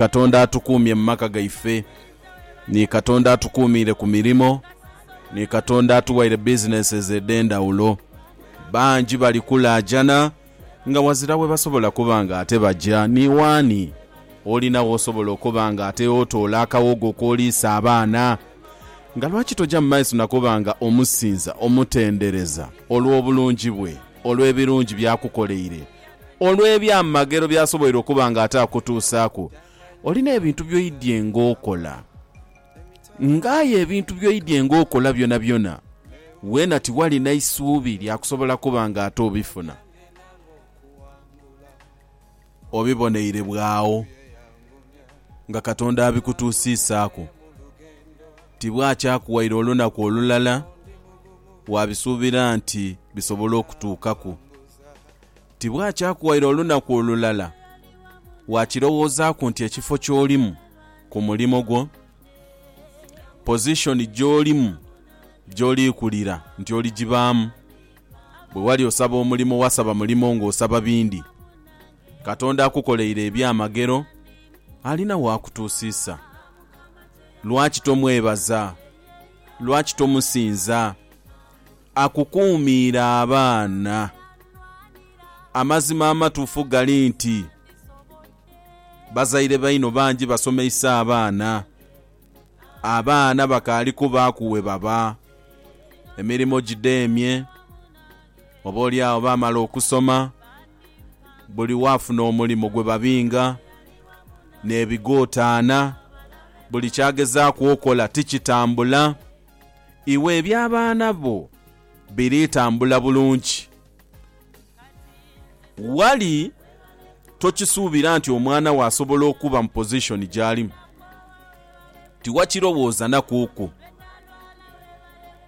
Katonda atukuumye mu maka gaife. Ni Katonda atukuumiire ku mirimo. Ni Katonda atuwaire businesses edh'endhawulo. Bangi bali kulaajana nga wazira webasobola kuba nga ate baja ni waani. Olina w'osobola okuba nga ate otoola akawogo k'oliisa abaana? Nga lwaki toja mu maiso na kuba nga omusinza, omutendereza olw'obulungi bwe, olw'ebirungi by'akukoleire? olw'ebyamagero by'asoboire okuba nga ataakutuusaaku. Oli n'ebintu by'oidye ng'okola. Ng'aye ebintu by'oidye ng'okola byonabyona, weena tiwali na isuubi lya kusobola kuba nga ate obifuna. Obiboneire bw'agho nga Katonda abikutuusiisaaku. Tibwakyakuwaire olunaku olulala, waabisuubira nti bisobola okutuukaku. tibwakyakuwaire olunaku olulala wakirowoozaaku nti ekifo ky'olimu ku mulimo gwo, pozishoni gy'olimu gy'oliikulira nti oligibaamu. Bwe wali osaba omulimo wasaba mulimo ng'osaba bindi. Katonda akukoleire ebyamagero, alina waakutuusiisa. Lwaki tomwebaza? Lwaki tomusinza? Akukuumiire abaana. Amazima amatufu gali nti bazaire baino bangi basomeisa abaana. Abaana bakaali kubaaku webaba, emirimo gidheemye, oba olyagho baamala okusoma, buli waafuna omulimo gwebabinga, nebigootaana, buli kyagezaaku okola tikitambula. Iwe eby'abaana bo biri tambula bulungi. Wali tokisuubira nti omwana wo asobola okuba mu pozishoni gy'alimu? Tiwakirowoozanakuuku.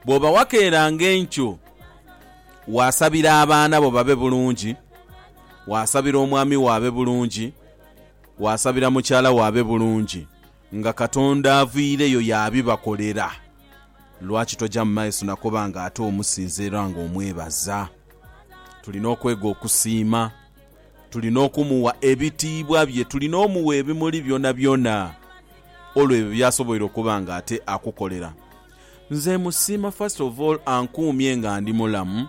Bw'oba wakeeranga enkyo, waasabira abaana bo babe bulungi, waasabira omwami wo abe bulungi, waasabira mukyala wo abe bulungi. Nga Katonda aviireyo yaabibakolera, lwaki toja mu maiso na kuba nga ate omusinza era nga omwebaza? Tulina okwega okusiima. Tulina okumugha ebitiibwa bye. Tulina omugha ebimuli byonabyona olw'ebyo by'asoboire okuba nga ate akukolera. Nze musiima first of all ankuumye nga ndi mulamu,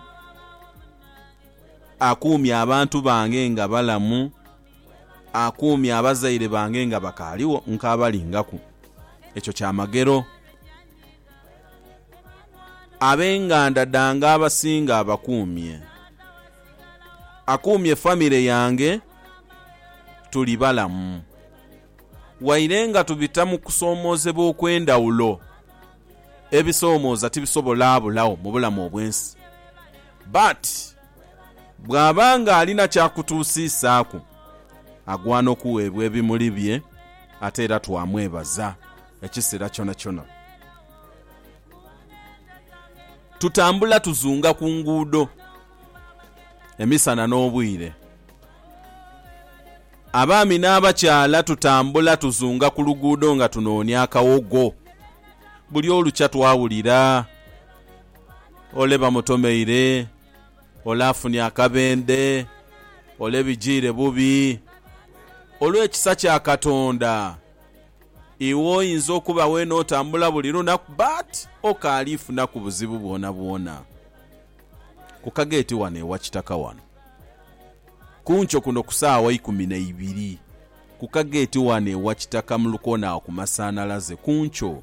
akuumye abantu bange nga balamu, akuumye abazaire bange nga bakaaligho nkaabalingaku. Ekyo kyamagero. Ab'enganda dhange abasinga abakuumye. Akuumye famire yange tuli balamu. Waire nga tubita mu kusoomoozebwa okw'endhawulo, ebisoomooza tibisobola bulagho mu bulamu obw'ensi. But. Bw'aba ng'alina ky'akutuusiisaaku, agwana okuweebwa ebimuli bye, ate era twamwebaza ekisera kyonakyona. Tutambula tuzunga ku nguudo emisana n'obwire. Abaami n'abakyala tutambula tuzunga ku luguudo nga tunoonia akawogo. Buli olukya twawulira. ole bamutomeire, ole afunye akabendhe, ole bijiire bubi. Olw'ekisa kya Katonda, iwe oyinza okuba weena otambula buli lunaku but okaali funaku buzibu bwonabwona. Ku kageeti ghano ewa Kitaka wano, kunkyo kuno ku saawa ikumi na ibiri, ku kageeti ghano ewa Kitaka mu lukoona agho ku masanhalaze, kunkyo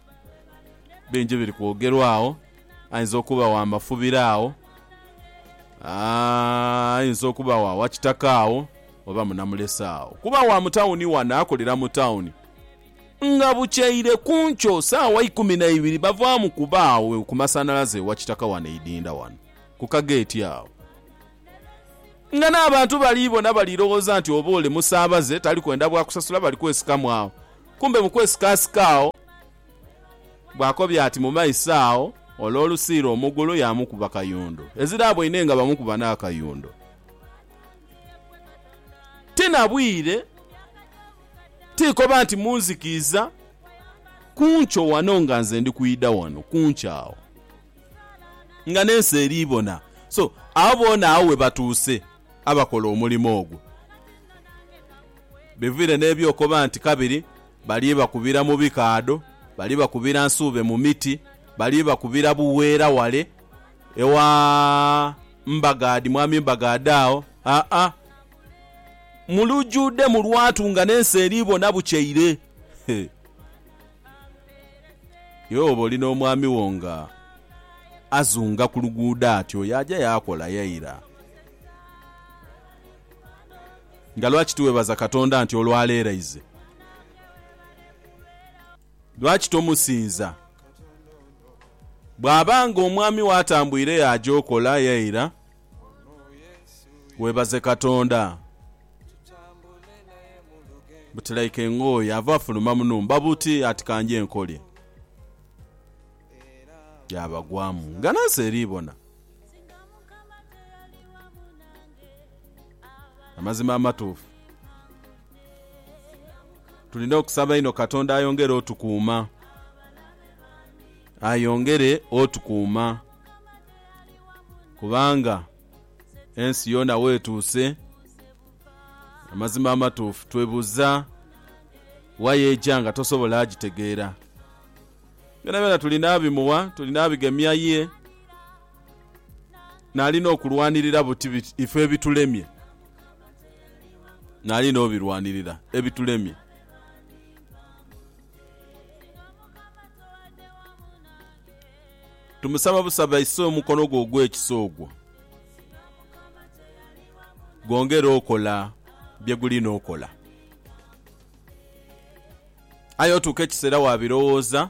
bingi biri kwogerwa agho, aidha okuba gha mafubiro agho, aa aidha okuba gha wakitaka agho oba munamulese agho kuba gha mu tawuni ghano akolera mu tawuni. Nga bukyeire ku nkyo sawa ikumi na ibiri bavaamu kuba agho ku masanhalaze e Wakitaka ghano e Idinda ghano ku kageeti agho. Nga n'abantu bali bona bali loghoza nti oba ole musaabaze tali kwenda bwa kusasula bali kwesikamu agho Kumbe mu kwesikaasika agho bwakobya ati mu maiso agho ole olusiira omugulu yaamukuba kayundo. Ezira aboine nga bamukuba n'akayundo. Ti na bwire, ti koba nti munzikiiza, ku nkyo wano nga nze ndi kwidha wano ku nkyo agho nga n'ensi eri bona. So, agho boona agho we batuuse abakola omulimo ogwo. Biviire n'eby'okoba nti kabiri bali bakubira mu bikaadho, bali bakubira nsuube mu miti, bali bakubira bugheera wale ewa Mbagaadhi, Mwami Mbagaadhi agho, aa, mu lujuudhe mu lwatu nga n'ensi eri bona bukyeire. He! Iwe woba oli n'omwami wo nga azunga ku luguudho atyo, yaaja yaakola yaira. Nga lwaki tiwebaza Katonda nti olwaleeraize? Lwaki tomusinza? Bwaba nga omwami wo atambuire yaaja okola ye eira, webaze Katonda. But like engooye ava afuluma munumba buti ati kanje nkolye. Byabagwamu nga nensi eribona. Amazima amatuufu, tulina okusaba inho Katonda ayongere otukuuma, ayongere otukuuma kubanga ensi yoona weetuuse, amazima amatuufu twebuuza wa y'eja nga tosobola gitegeera. Byonabyona tulina abimuwa, tulina abigemya ye. Nali n'okulwanirira buti biti ife ebitulemye. Nali n'obirwanirira ebitulemye. Tumusaba busaba aise omukono gwe ogw'ekisa ogwo gwongere okola bye guli n'okola. Aye otuuka ekiseera waabirowooza.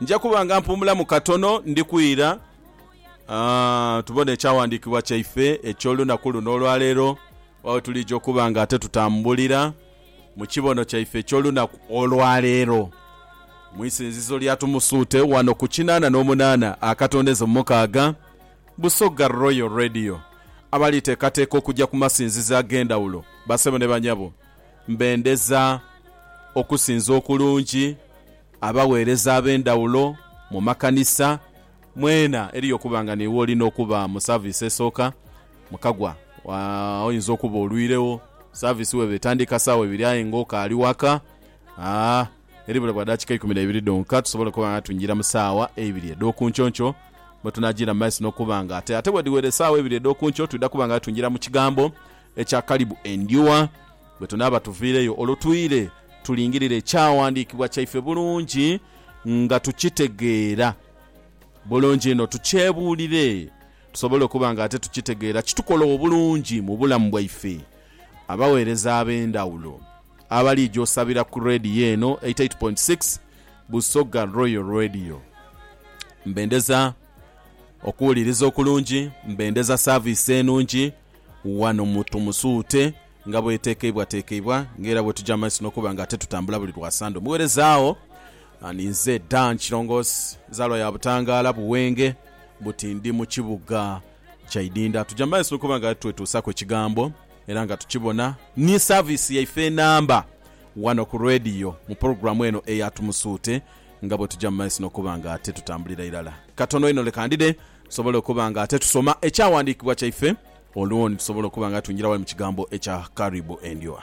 Nja kuba nga mpuumulamu katono, ndi kwira. Ah, tubone ekyawandiikibwa kyaife eky'olunaku luno olwa leero, oba we tuliija okuba nga ate tutambulira mu kibono kyaife eky'olunaku olwa leero, mu isinzizo lya Tumusuute ghano ku kinaana n'omunaana akatondeze mu mukaaga. Busoga Royal Radio, Abalitekateka okuja ku masinzizo ag'endhawulo basebo ne banyabo mbendeza okusinza okulungi, abaweereza ab'endhawulo mu makanisa mwena eriyo okuba nga niiwe olina okuba mu service esooka mukagwa oyinza okuba olwiiregho service weba etandika saawa ibiri aye nga okaali waka. eribula bwa daakika ikumi na ibiri dhonka tusobole okuba nga twingira mu saawa eibiri edh'oku nkyonkyio, mwe tunaajiira mu maiso n'okuba nga ate, ate bwedhiwera esaawa eibiri edh'oku nkyo, twidha kuba nga twingira mu Kigambo ekya Kalibu Endhuwa. Bwe tunaaba tuviireyo olwo twire tulingirire Ekyawandiikibwa kyaife bulungi nga tukitegeera bulungi inho, tukyebuulire tusobole okuba nga ate tukitegeera kitukola obulungi mu bulamu bwaife, abaweereza ab'endhawulo. Abalija osabira ku Radio eno 88.6 Busoga Royal Radio mbendeza okuwuliriza okulungi, mbendeza service enungi wano mu Tumusuute nga bwetekeibwatekeibwa nga era bwetuja mumaiso nokuba nga ate tutambula buli lwa Sande omuwereza agho ninze Dan Kirongosi nzalwa ya Butangala Buwenge buti ndi mukibuga kya Idinda tuja mumaiso nokuba nga twetuusaku ekigambo era nga tukibona ni saviisi yaife enamba wano ku Radio mu pulogulamu eno eya Tumusuute nga bwetuja mu maiso nokuba nga ate tutambulira irala katono inho leka ndide tusobole okuba nga ate tusoma ekyawandikibwa kyaife olwoni tusobole okuba nga twingira wali mu kigambo ekya Karibu Endyowa.